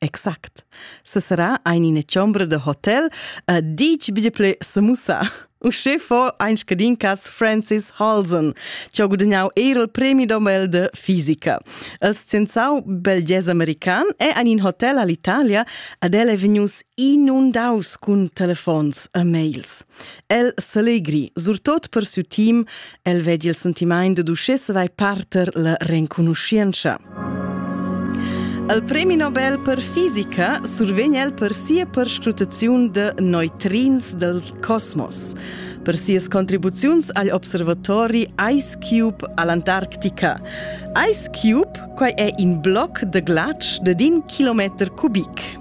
Exact. Sesera ein ina chombra da hotel uh, dic bia ple semussa. Uschè fo ein scadin cas Francis Halson, che ha gudagnau er il premi Nobel de fisica. Il scienzau belges american è ein in hotel all'Italia ad el è vegnius inundaus cun telefons e mails. El selegri, surtot per siu team, El vegli il sentimaint dad uschè vai parter la renconuschientscha. Al premi Nobel per fisica survegn el per sia perscrutaziun de neutrins del cosmos, per sias contribuziuns agl observatori Ice Cube all'Antarctica. Ice Cube quai è in bloc de glatsch de din kilometer cubic.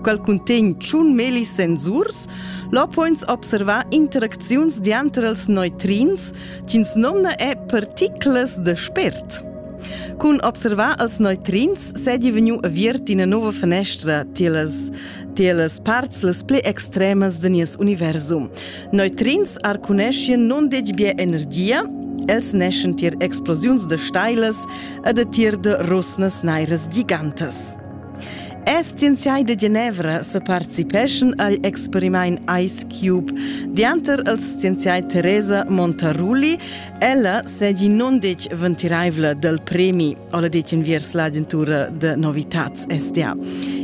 Quel cuntegn tschun melis sensurs, lo poins observar interacziuns dianter els neutrins, ch'ins nomna è particlas de spert. Cun observar els neutrins sedi vegnu aviert ina nova fenestra tilas, tilas parts las pli extremas de nies universum. Neutrins arcuneschien non dec bia energia, els neschen tier explosiuns de stailas e de tier de rusnas nairas gigantas. Es scienziai da Genevra sa participeschan agl experimaint Ice Cube dianter els scienziai Teresa Montarulli. Ella segi non dec ventiraivla del premi, ola dec enviers l'agentura de novitats SDA.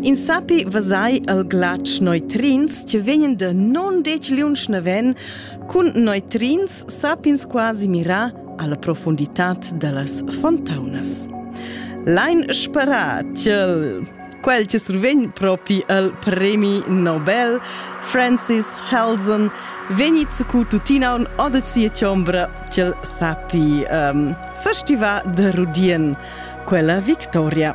In sapi vasai al glac neutrins che vegnen de non dec liunsch naven, cun neutrins sapins quasi mirà alla profunditad dallas fontaunas. Lein sperar ch'el quel che survegn propi il premi Nobel, Francis Helsen, vegni cu tutina un odesia chombra ch'el sapi um, festivar de Rudien quella victoria.